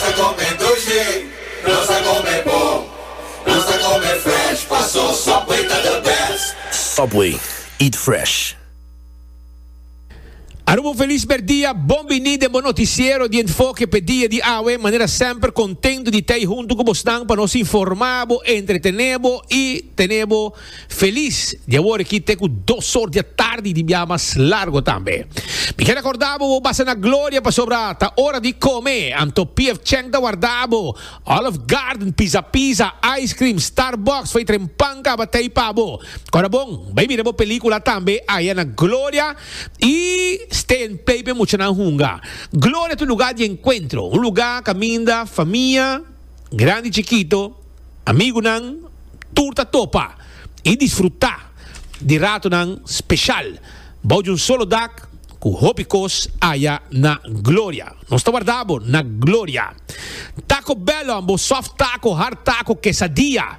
ta come dulce, nos ta come bon, nos ta come fresh, paso Subway ta the best. Subway, eat fresh. Aruba un felis merdia, bon bini den bo noticiero di Enfoke p'e dia di awe. Manera semper contento di t'ey hunto cu bosnan pa nos informa bo, entretene bo y tene bo. Felis di awor aki te ku dos sor di atardi di bia mas largo tambe. Mi keda korda bo, bo basa na gloria pasobra ta ora di kome, anto PF Chang ta warda bo, Olive Garden, Pizza Pizza, ice cream, Starbucks, fei tren pan kabatei pa bo. Kora bon, bai mira bo pelikula tambe aya na gloria i stay and play p'e muchanan hunga. Gloria ta un luga di enkuentro, un luga kaminda famia, grandi chikito, Amigunan tur ta topa i disfrutá di ratonan speshal bou di un solo dak ku hopi kos aya na Gloria. Nos ta warda bo na Gloria. Taco Bell on bo soft taco, hard taco, quesadilla,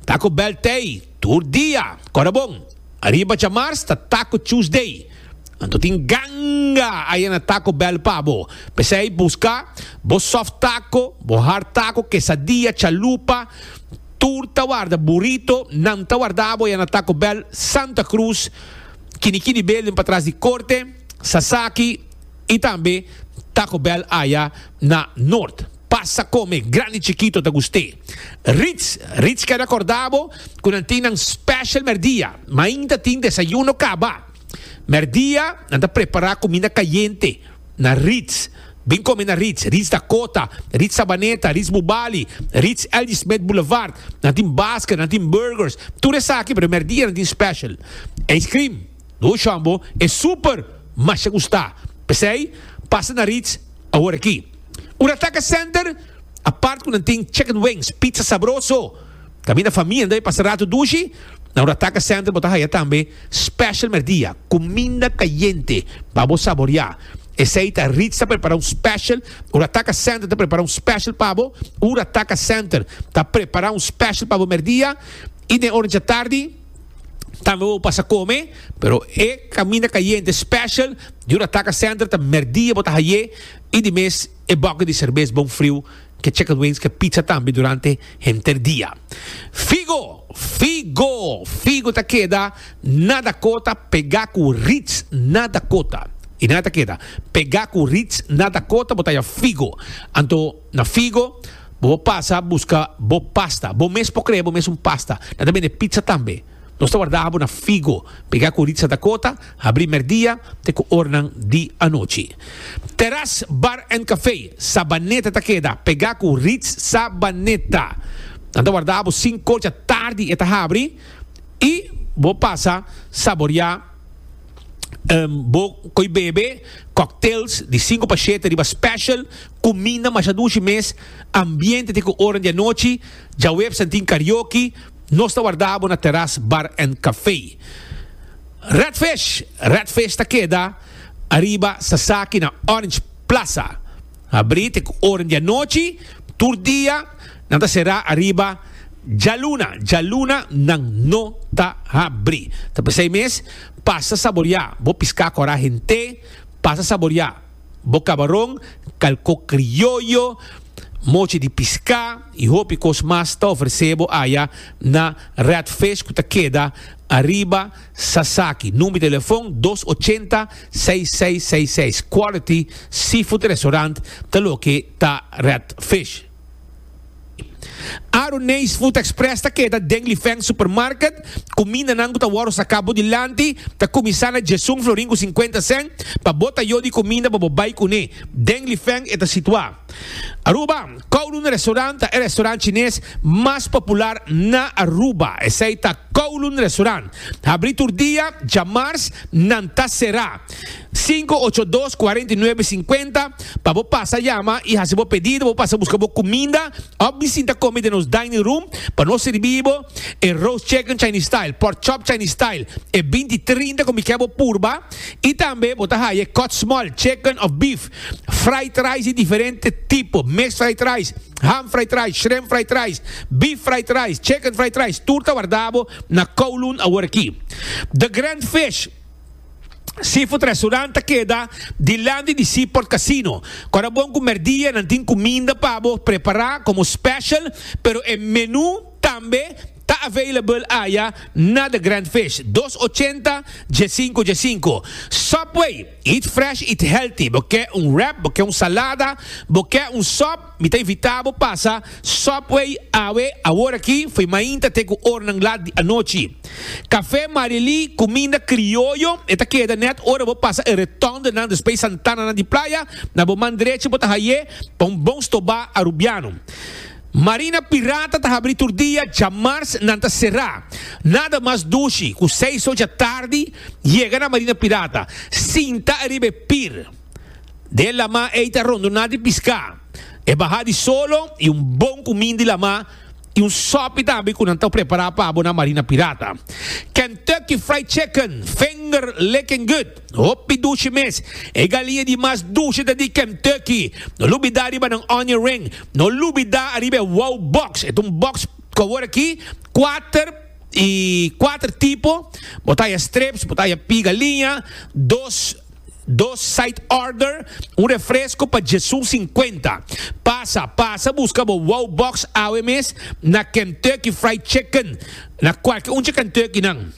Taco Bell tei. Tur dia, kora bon. Ariba djamars ta Taco Tuesday. Anto tin ganga aya na Taco Bell pa bo. P'esei buska bo soft taco, bo hard taco, quesadilla, chalupa, tur ta warda burrito. Nan ta warda bo aya na Taco Bell Santa Cruz, Kini Kini Building patras di Corte, Sasaki i tambe Taco Bell aya na Noord. Pasa come, grandi chikito ta gust'é. Ritz, Ritz keda korda bo ku nan tin nan special mèrdia. Mainta tin desayuno kaba. Mèrdia nan ta prepara kuminda kayente na Ritz. Bin kome na Ritz, Ritz Dakota, Ritz Sabaneta, Ritz Bubali, Ritz L.G. Smith Boulevard. Nan tin basket, nan tin burgers, tur esaki, pero mèrdia nan tin special. Ice cream, Duo Jumbo, e super masha gusta. P'esei, pasa na Ritz. Awor aki, un ataka center apart ku nan tin chicken wings, pizza sabroso. Kaminda famienda e pasa ratu dushi, na un ataka center bo ta haya tambe special merdia, kuminda kayente pa bo saborea. Esei ta Ritz ta prepara un special, un ataka center ta prepara un special pa bo, un ataka center ta prepara un special pa bo merdia i den ora djatardi. tambe bo pasa come pero e caminda cayente special jura taca center ta merdia bo ta haye y di mes e boki di cerveza bon friu que chicken wings que pizza tambe durante henter dia figo figo figo ta keda na Dakota pega cu Ritz na Dakota y na ta keda pega cu Ritz na Dakota bo ta ya figo anto Na Figo, bo por pasa buska bo pasta. Bo mes por krea bo mes un pasta. Nan ta bende pizza tambe. Nos ta warda abo na Figo. Pega ku Ritza Dakota, habri merdia te ku ornan di anochi. Terras Bar and Café, Sabaneta ta keda. Pega ku Ritz Sabaneta. Nan ta warda abo sinku dja tardi e ta habri i bo pasa saborea bo koe bebe cocktails di sinku pa shete riba special. Cuminda masha dushi mes, ambiente te cu oran di anochi, djaweps nan tin karaoke, nos ta warda bo na Terras Bar and Café. Redfish, Redfish ta keda ariba Sasaki na Orange Plaza. Habri te cu oran di anochi, tur dia nan ta sera ariba djaluna, djaluna nan no ta habri. Ta p'esey mes, pasa saboria bo pisca cora hente, pasa saboria bo kabaron, kalko krioyo, mochi di piská i hopi kos mas ta ofresé bo aya na Red Fish ku ta keda ariba Sasaki. Number di telefon dos ochenta seis seis seis seis. Quality Seafood Restaurant ta loke ta Red Fish. Aru Neys Food Express ta keda den Lifeng Supermarket. Kumindanan ku ta wòrdu saka bo dilanti ta kuminsá na djesun florin ku sinkuenta sen. Pa bo ta yu di kuminda pa bo bai kuné den Lifeng e ta situá. Aruba, Kowloon Restaurant ta e restaurant chines mas popular na Aruba. Esei ta Kowloon Restaurant. Habrí tur dia, dja mars nan ta será. Sinku ocho dos kuarenta i nuebe sinkuenta pa bo pasa yama i hasi bo pedido bo pasa buska bo kuminda òf di sinta komi den nos dining room pa nos sirbi bo e roast chicken chinese style pork chop chinese style e binti trinta komi kè bo purba i tambe bo ta haya e kòt small chicken òf beef fried rice di diferente tipo mes fried rice ham fried rice shrimp fried rice beef fried rice chicken fried rice tur ta warda bo na kowloon awor aki the grand fish. Seafood Restaurant ta keda dilanti di Seaport Casino. Kor a bon ku merdia nan tin kuminda pa bo prepará komo special, pero e menú tambe ta available aya na The Grand Fish, dos ochenta dje sinku dje sinku. Subway, eat fresh, eat healthy, bo ke un wrap, bo ke un salada, bo ke un sòp, Mi ta invita bo pasa Subway awe aworaki fo'i mainta te ku ornan lat di anochi. Kafé Marilí, kuminda krioyo, e ta keda nèt ora bo pasa e retondenan despues e santananan di playa, na bo man drechi bo ta haye pa un bon stobá arubiano. Marina Pirata ta habri tur dia, djamars nan ta será. Nada mas dushi ku seis ocha tardi yega na Marina Pirata, sinta ariba e pir. den e lama ei ta ronduná di piská. E bahá di solo i un bon kumin di lama i un sòpi tambe ku nan ta prepará pa bo na Marina Pirata. Kentucky Fried Chicken, finger licking good, hopi dushi mes. E galinha di mas dushi ta di Kentucky. No lubidá riba nan onion ring. No lubidá ariba e wow box. E ta un box ku awor aki kuater i kuater tipo. Bo ta haya strips, bo ta haya pia galinha, dos. Dos side order, un refresco pa Jesu cincuenta. Pasa, pasa busca bo wow box awe mes na Kentucky Fried Chicken, na cualke un dje Kentucky nan.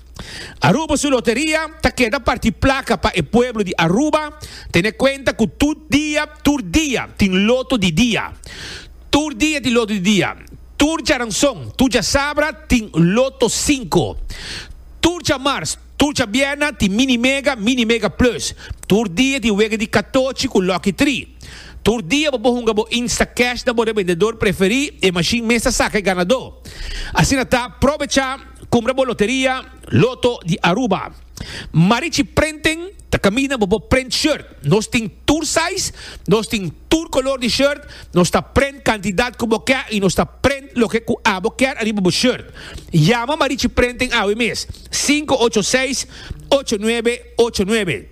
Aruba su loteria ta keda parti placa pa e pueblo di Aruba, tene cuenta cu tur dia, tur dia tin loto di dia. Tur dia tin loto di dia. Tur djaranzon, tur djasabra tin loto cinco. Tur djamars. Tur djabièrna tin Mini Mega, Mini Mega Plus. Tur dia tin wega di katochi ku Lucky Tri. Tur dia bo por hunga bo Instacash na bo rebendedor preferí, e mashin mes ta saka e ganadó. Asina ta, probecha kumbra bo loteria Lotto di Aruba. Marichi Printing ta kaminda bo por print shirt. Nos tin tur size, nos tin tur kolor di shirt, nos ta print kantidat ku bo kè i nos ta print loke ku abo kèr ariba bo shirt. Yama Marichi Printing awe mes. Sinku ocho seis, ocho nuebe, ocho nuebe.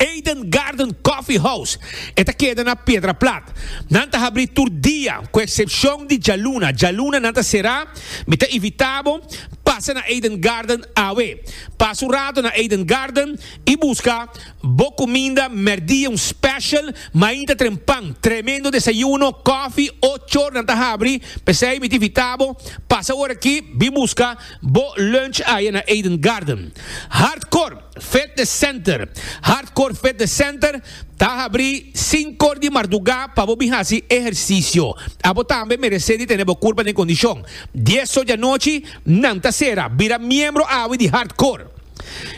Eden Garden Coffee House e ta keda na Piedra Plat. Nan ta habrí tur dia ku eksepshon di djaluna. Djaluna nan ta será. Mi ta invitá bo pasa na Eden Garden awe. Pasa un rato na Eden Garden i buska bo kuminda mèrdia, un special mainta trempan. Tremendo desayuno, kòfi, ocho nan ta habrí. P'esei mi ta invitá bo pasa ora aki, bin buska. Bo lunch aye na Eden Garden. Hartcourt Fitness Center Hartcourt Fitness Center ta habri sinkor di mardugá pa bo bin hasi ehersisio. Abo tambe meresé di tene bo kurpa den kondishon. Dies so di anochi nan ta sera. Bira miembro awe di Hartcourt.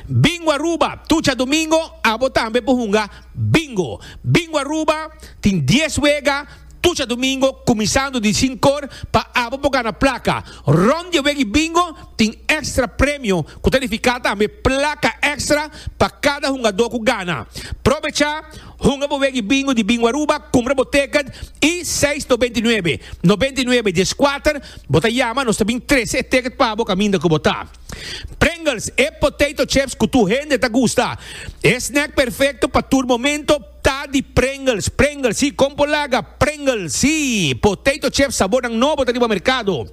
Bingo Aruba Tucha Domingo abo tambe por hunga Bingo. Bingo Aruba tin dies wega. Tucha domingo kuminsando di sinkor pa abo por gana plaka. Rond di e weki bingo tin èkstra premio ku ta nifiká tambe plaka èkstra pa kada hungadó ku gana. Probechá, hunga bo weki bingo di Bingo Aruba, kumpra bo tèkèt i seis to binti nuebe, nobenta i nuebe dies kuater, bo ta yama nos ta bin trese e tèkèt pa bo kaminda ku bo ta. Pringles, e potato chips ku tur hende ta gusta. E snèk perfekto pa tur momento. Ta di Pringles, Pringles si, kon por laga Pringles si. Potato chips sabornan nobo ta riba merkado.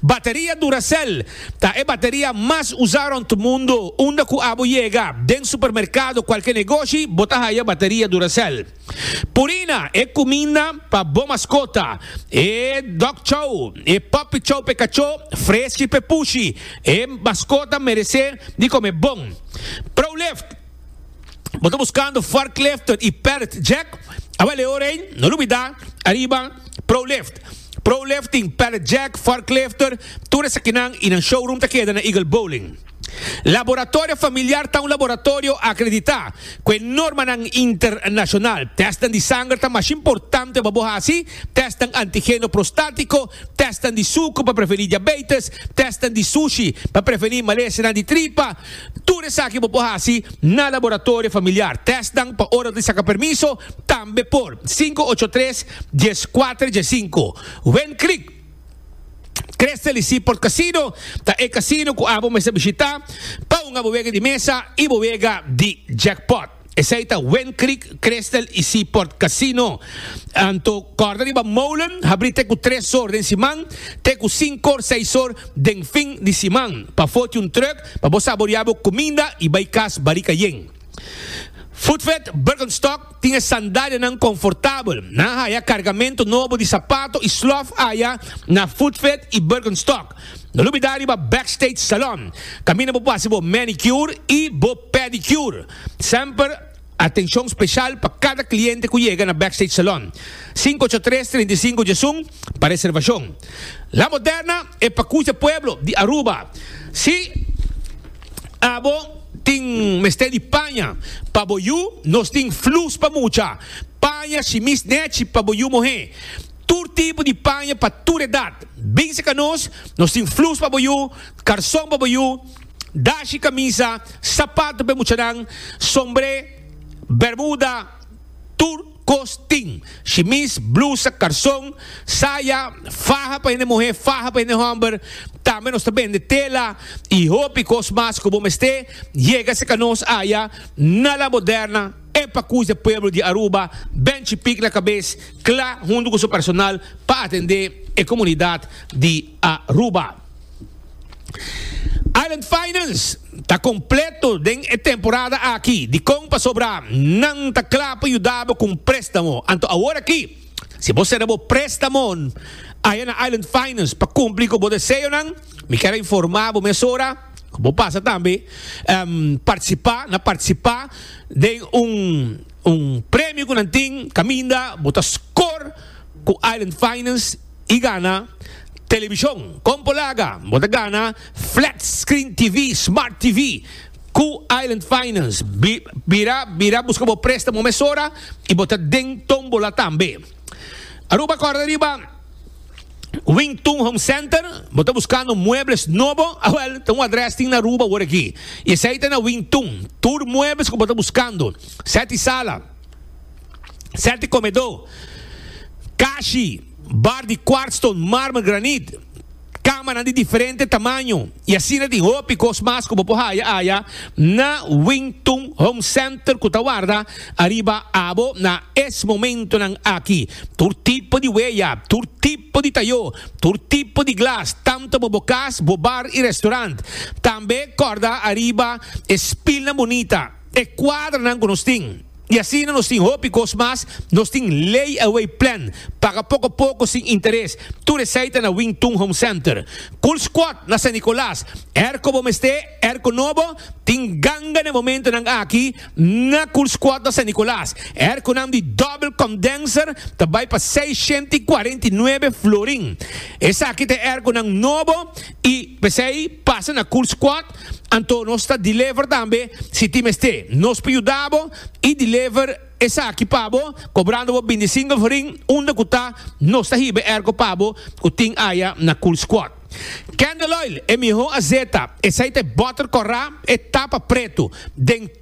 Bateria Duracell ta e bateria mas usa rònt mundo. Unda ku abo yega, den supermerkado, kualke negoshi, bo ta haya bateria Duracell. Purina, e kuminda pa bo maskota, e dog chow, e puppy chow p'e kachó, freski p'e pushi. E maskota meresé di kome bon. Prolift. Bo ta buscando forklifter y pallet jack? Awel e ora ei, no lo bida ariba Prolift. Prolift tin pallet jack, forklifter, tur esakinan y nan showroom ta keda na Eagle Bowling. Laboratorio Familiar ta un laboratorio acredita cu e normanan internacional. Testnan di sanger ta mas importante pa bo haci, testnan antigeno prostatico, testnan di sucu pa preveni diabetes, testnan di sushi pa preveni malesenan di tripa, Tur esaki bo por hasi na laboratorio familiar. Tèstnan pa ora di saka permiso tambe por. Sinku ocho tres, dies kuater, dies sinku. Wen Creek Creste Leaseport Casino ta e casino ku abo mester bishita pa hunga bo wega di mesa i bo wega di jackpot. Esei ta Wind Creek, Crystal i Seaport Casino. Anto corda riba molen habri te cu tres or den siman, te cu cinco or, seis or den fin di siman. Pafo tin un truck pa bo saborea bo cuminda i bai cas barica yen. Footfed Birkenstock tin e sandalianan confortabel. Nan haya cargamento nobo di sapato i slof aya na Footfed i Birkenstock. No lubida riba Backstage Salon, kaminda bo por hasi bo manicure i bo pedicure. Semper atenshon speshal pa kada kliente ku yega na Backstage Salon. Sinku ocho tres, trinta i sinku dje sun pa reservashon. La Moderna e pakucha pueblo di Aruba. Si abo tin mester di paña pa bo yu, nos tin flus pa mucha, paña, shimis, nechi pa bo yu muhé. Tur tipo di paña pa tur edat. Binse ka nos, nos tin flus pa bo yu, karson pa bo yu, dashi, kamisa, sapato p'e muchanan, sombré, bermuda, tur kos tin, shimis, blusa, karson, saya, faha pa hende muhé, faha pa hende hòmber, tambe nos ta bende tela i hopi kos mas ku bo mester yega se ka nos aya na La Moderna, e pakus de pueblo di Aruba, Benchi Pic na kabes. Kla huntu ku su personal pa atendé e komunidat di Aruba. Island Finance ta kompleto den e temporada aki. Dikon pasobra nan ta kla pa yuda bo ku un préstamo? Anto aworakí, si bo sera bo préstamon aya na Island Finance pa kumpli ku bo deseonan, mi kier a informá bo mesora ku bo pasa tambe partisipá na partisipá den un. Un premio cu nan tin caminda bo ta scor cu Island Finance y gana television. Con por laga? Bo ta gana Flat Screen TV, Smart TV, cu Island Finance. Bira bira busca bo prestamo mesora y bo ta den tombola tambe. Aruba corda riba Wing Tun Home Center. Bo ta buscando muebles nobo? A wel, ta un adres tin na Aruba woreki y esey ta na Wing Tun. Tur muebles cu bo ta buscando. Sèt i sala, sèt i komedó, kashi, bard di kwartston, mármer, granit, kamanan di diferente tamaño i asina tin hopi kos mas ku bo por haya aya na Wing Tun Home Center ku ta warda ariba abo na es momentonan aki. Tur tipo di weya, tur tipo di tayó, tur tipo di glas, tantu bo bo kas, bo bar i restorant. Tambe kòrda ariba e spilnan bunita. e kuadranan ku nos tin. I asina nos tin hopi kos mas, nos tin lay-away plan, paga poko poko sin interes, tur esei ta na Wing Tun Home Center. Cool Squad na San Nicolas, er ku bo mester, er ku no bo, tin ganga na e momentonan aki na Cool Squad na San Nicolas, er ku nan di Double Condenser ta bai pa seis shenta i kuarenta i nuebe florin. Esaki ta e er ku nan nobo i p'esei pasa na Cool Squad. Anto nos ta deliver tambe si tin mester. Nos por yuda bo y deliver esaki pa bo cobrando bo binti single for ring unda cu ta nos ta hiba e erco pa bo cu tin aya na Cool Squad. Candle Oil e miho azeta, esai ta e butter corra, e tapa preto den.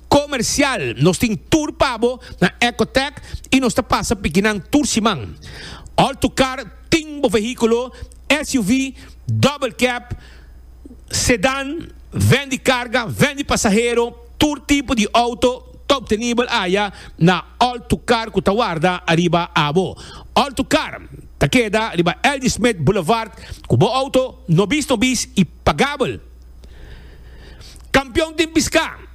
Comercial, Nos tin tur pa bo na Ecotech y nos ta pasa pikinan tur siman. All to car, Tin bo vehiculo, SUV, double cab, sedan, ven di carga, ven di pasahero, tur tipo di auto ta obtenibel aya na All to car cu ta warda ariba abo. All to car ta keda riba L. D. Smith Boulevard cu bo auto nobis nobis y. Pa Gabel. Kampion tin piská.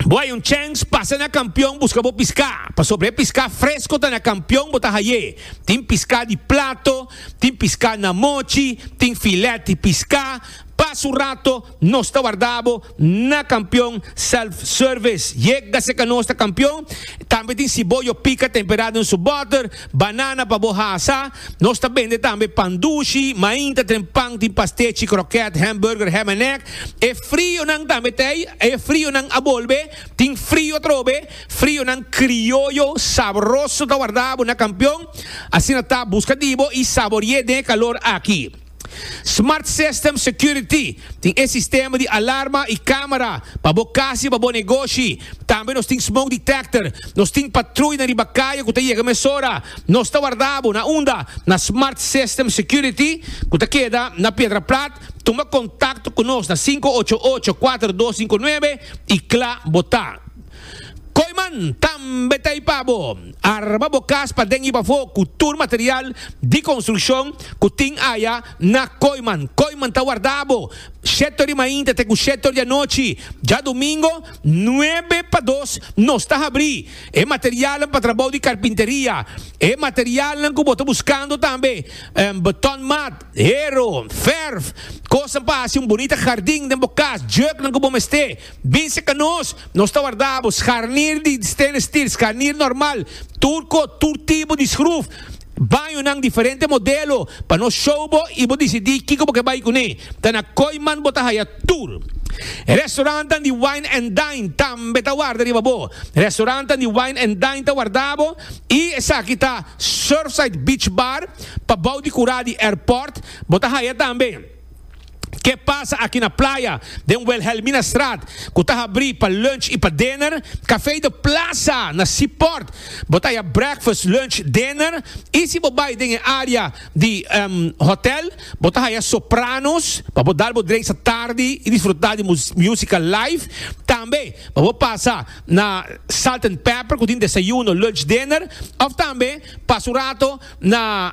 Bo hay un chèns pasa na kampion buska bo piská, pasobra e piská fresko ta na kampion bo ta hay'é. Tin piská di plato, tin piská na mochi, tin filèt di piská. Pas un rato nos ta wardá bo Na kampion self service yega se kanos ta kampion tambe tin siboyo pika temperado den su boter banana pa bo hasa nos ta bende tambe pan dushi mainta tren pan tin pastechi kroket hamburger ham en egg e frio nan tambe ta ey e frio nan a bolbe tin frio atrobe frio nan krioyo sabroso ta wardabo na kampion asina ta buska di bo y saborié den e kalor aki. Smart System Security, tin e sistema di alarma y camera pa bo cas y pa bo negoshi. Tambe nos tin Smoke Detector. Nos tin patruinan riba caye cu ta yega mesora. Nos ta warda bo na unda? Na Smart System Security cu ta keda na Piedra Plat. Tuma contacto cu nos na cinco ocho ocho cuatro dos cinco nueve y cla bo ta. Koyman tambe ta i pa bo arma bo kas paden i pafó ku tur material di konstrukshon ku tin aya na Koyman. Koyman ta warda bo shetor di mainta te ku shetor di anochi. Djadumingo nuebe pa dos nos ta habrí e materialnan pa trabou di karpinteria. E materialnan ku bo ta buskando tambe beton mat, hero, verf, kosnan pa hasi un bunita hardin den bo kas, jèknan ku bo mester. Binse ka nos, nos ta warda bo scharnier di stainless steel, scharnier normal, turco, tur tipo di schruf, bañonan diferente modelo pa nos show bo y bo dicidi kico bo ke bay cune. Ta na Kooiman bo ta haya tur. Restaurantnan di wine and dine tambe ta warda riba bo. Restaurantnan di wine and dine ta warda bo y esaki ta Surfside Beach Bar pa bou di cura di airport, bo ta haya tambe. Ke pasa aki na playa, den Wilhelminastraat, ku ta habrí pa lunch i pa dinner, Café de Plaza na Seaport, bo ta haña breakfast, lunch, dinner, i si bo bai den e área di hòtel, bo ta haña Sopranos pa bo dal bo dreisa tardi i disfrutá di músika live. Tambe pa bo pasa na Salt and Pepper ku tin desayuno, lunch, dinner, òf tambe pasa un rato na.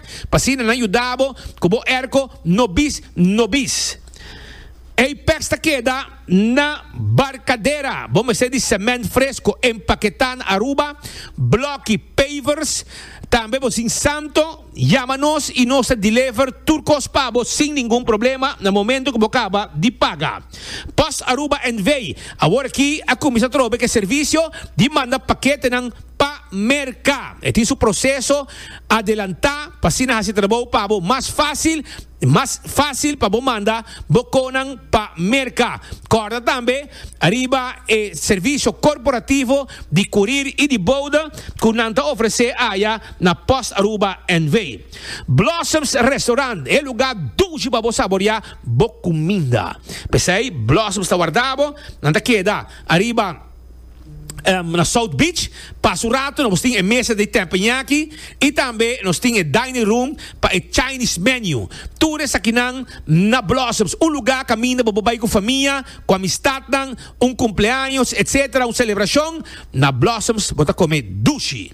Pa asina nan yudabo ku bo erko no bis no bis. Ey pes ta keda na barkadera, bo mester di sement fresko empaketá na Aruba, bloki, pavers. Tambe bo sin santo, yama nos i nos ta dilever tur kos pa bo sin ningun problema na momento ku bo kaba di paga. Post Aruba NV. Awor aki a kuminsá trobe ku e servisio di manda paketenan pa merka. E tin su proseso. adelantá pa asina hasi trabou pa bo mas fásil i mas fásil pa bo manda bo konan pa merka. Kòrda tambe riba e servisio korporativo di kurir i di bouda ku nan ta ofresé aya na Post Aruba NV. Blossoms Restaurant e lugá dushi pa bo saboreá bo kuminda. P'esei Blossoms ta warda bo, nan ta keda ariba. um, na South Beach. Pas un rato nos tin e mesa di teppanyaki y tambe nos tin e dining room pa e Chinese menu. Tur esakinan na Blossoms, un lugar caminda bo por bay cu famia, cu amistadnan, un cumpleaños, etc. Un celebracion, na Blossoms bo ta come dushi.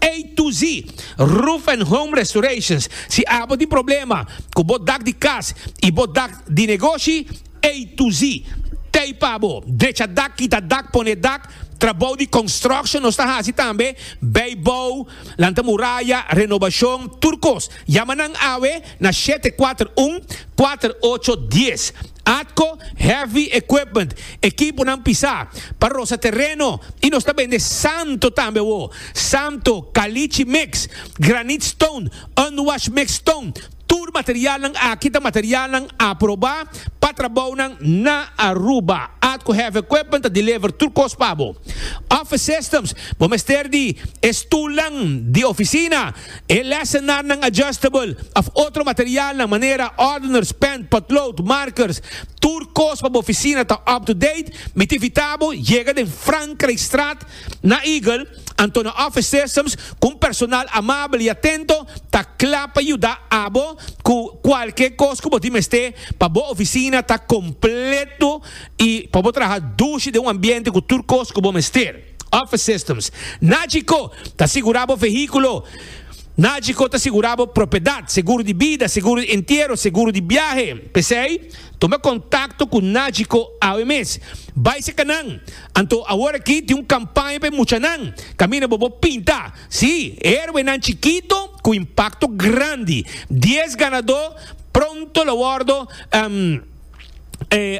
A to Z, Roof and Home Restorations, Si abo tin problema ku bo dak di kas i bo dak di negoshi, A to Z ta ei pa bo, drecha dak, kita dak, pone dak, trabou di construction nos ta hasi tambe, bay bou, lanta muraya, renobashon, tur kos. Yama nan awe na shete kuater un, kuater ocho dies. Atco heavy equipment, ekiponan pisá, pa rosa tereno y nos ta bende santo tambe awo, santo, caliche mix, granite stone, unwashed mixed stone, tur materialnan aki ta materialnan aprobá pa trabounan na Aruba. Atco Heavy Equipment ta deliver tur cos pa bo. Office systems, bo mester di e stulnan di oficina, E lesenarnan adjustable of otro materialnan manera ordeners, pen, potlood, markers, tur kos pa bo oficina ta up to date, mi ta invita bo yega den Frankrijkstraat na Eagle, anto na office systems cu un personal amabel y atento ta cla pa yuda abo cu cualke kos cu bo tin mester pa bo oficina ta completo y pa bo traha dushi den un ambiente cu tur kos cu bo mester. Office Systems. Nagico ta sigurá bo vehíkulo. Nagico ta sigurá bo propiedat, seguro di bida, seguro di entiero, seguro di biahe. P'esei, tuma kontakto ku Nagico awe mes. Bai seka nan! Anto awor aki tin un kampaña pa e muchanan. Kaminda bo bo pinta! Sí, héroenan chikito ku impakto grandi. Dies ganadó pronto lo wòrdu.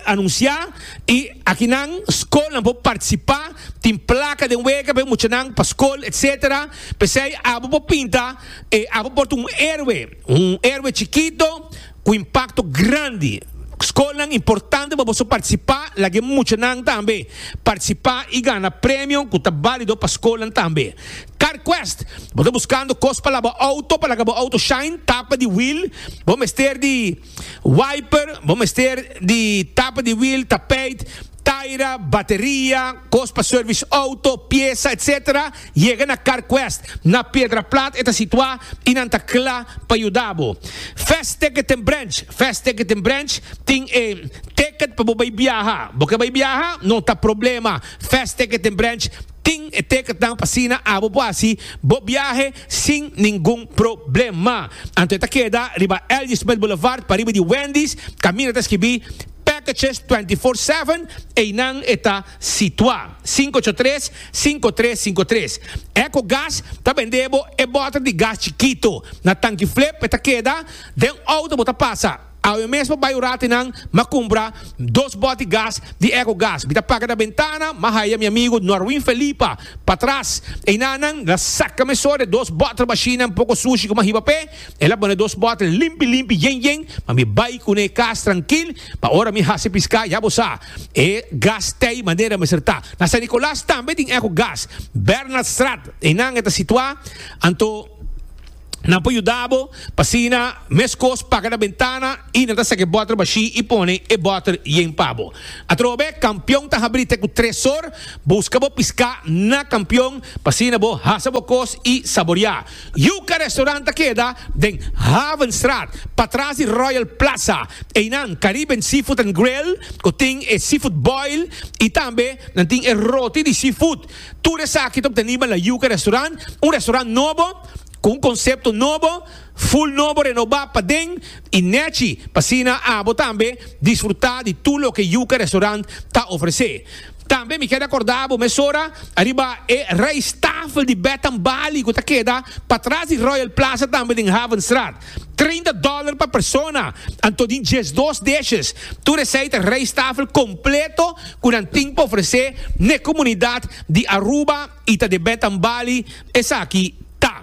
anuncia y aki nan school nan por participa tin placa den wega pe muchanan pa school etcetera pesey abo por pinta e abo por ta un heroe un heroe chikito cu impacto grandi school nan importante pa boso participa laguey muchanan tambe participa y gana premio cu ta balido pa school nan tambe car quest bo ta buscando cos pa laba auto pa laga bo auto shine tapa di wheel bo mester di. Wiper, bo mester di tapa di wiel, tapijt, taira, bateria, kos pa service auto, piesa etc. Yega na Carquest, na Piedraplat e ta situa y nan ta cla pa yuda bo. Fast Ticket en Branch, Fast Ticket en Branch tin e ticket pa bo bay biaha. Bo ke bay biaha? No ta problema, Fast Ticket en Branch tin e ticketnan pa asina abo por haci bo biahe sin ningun problema. Anto e ta keda riba L.J. Smith Boulevard pariba di Wendy's, kaminda e ta skibí Packages Twenty Four Seven, einan e ta situá. Sinku ocho tres, sinku tres sinku tres. Echo Gas ta bend'é bo e bòter di gas chikito. Na tanki flip e ta keda den outo bo ta pasa. Awe mesmo bai ora te nan, m'a cumpra dos boti gas di Eco Gas. Mi ta paga na bentana, m'a haya mi amigo Norwin Felipa patras. Eina nan la saca me so de dos bottle bashinan poco sushi cu m'a hiba p'e. E la bone dos bottle limpi limpi, yen yen, ma mi bai cu n'e cas trankil, pa ora mi haci pisca, ya bo sa. E gas t'ey manera mester ta. Na San Nicolas tambe tin Eco Gas, Bernhardstraat, einan e ta situa, anto. Nan por yuda bo pa sina meskos paga na bentana i nan ta saki bòter bashí i pone e bòter yen pa bo. Atrobe, kampion ta habrí te ku tresor. Buska bo piská na kampion pa asina bo hasa bo kos i saboriá. Yuka Restaurant ta keda den Havenstraat, patras di Royal Plaza. Einan Caribbean Seafood and Grill, ku tin e seafood boil i tambe nan tin e roti di seafood. Tur esaki ta obteniba na Yuca Restaurant, un restaurant nobo, cu un concepto nobo, full nobo, renoba paden y nechi, p'asina abo tambe disfruta di tur loke Yuca Restaurant ta ofrece. Tambe mi keda corda abo mesora ariba e rijsttafel di Bed and Bali cu ta keda patras di Royal Plaza tambe den Havenstraat. Treinta dòler pa persona, anto di diesdos dishes. Tur esei ta rijsttafel completo cu nan tin pa ofrece n'e comunidad di Aruba y ta de Betambali. Esaki ta.